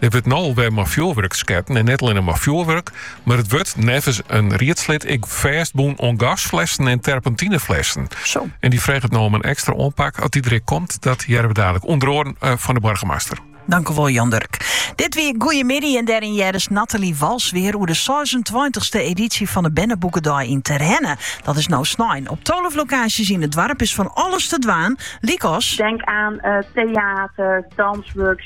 Der wurdt no alwer mei fjoerwurk sketten en net allinnich mei fjoerwurk, mar it wurdt neffens in riedslid ek fêstbûn oan gasflessen en terpentineflessen. Zo. En dy freget no om in ekstra oanpak oft dy der ek komt. Dat hearre we dadelijk ûnder oaren eh, fan de boargemaster. Tankewol, Jan Durk. Dit wie Goeiemiddei en dêryn hearden jo Nathalie Wals wer oer de 26e edysje fan de Berneboekedei yn Terherne. Dat is no snein. Op 12 lokaasjes yn it doarp is fan alles te dwaan, lykas, tink oan eh, teater, dûnsworkshops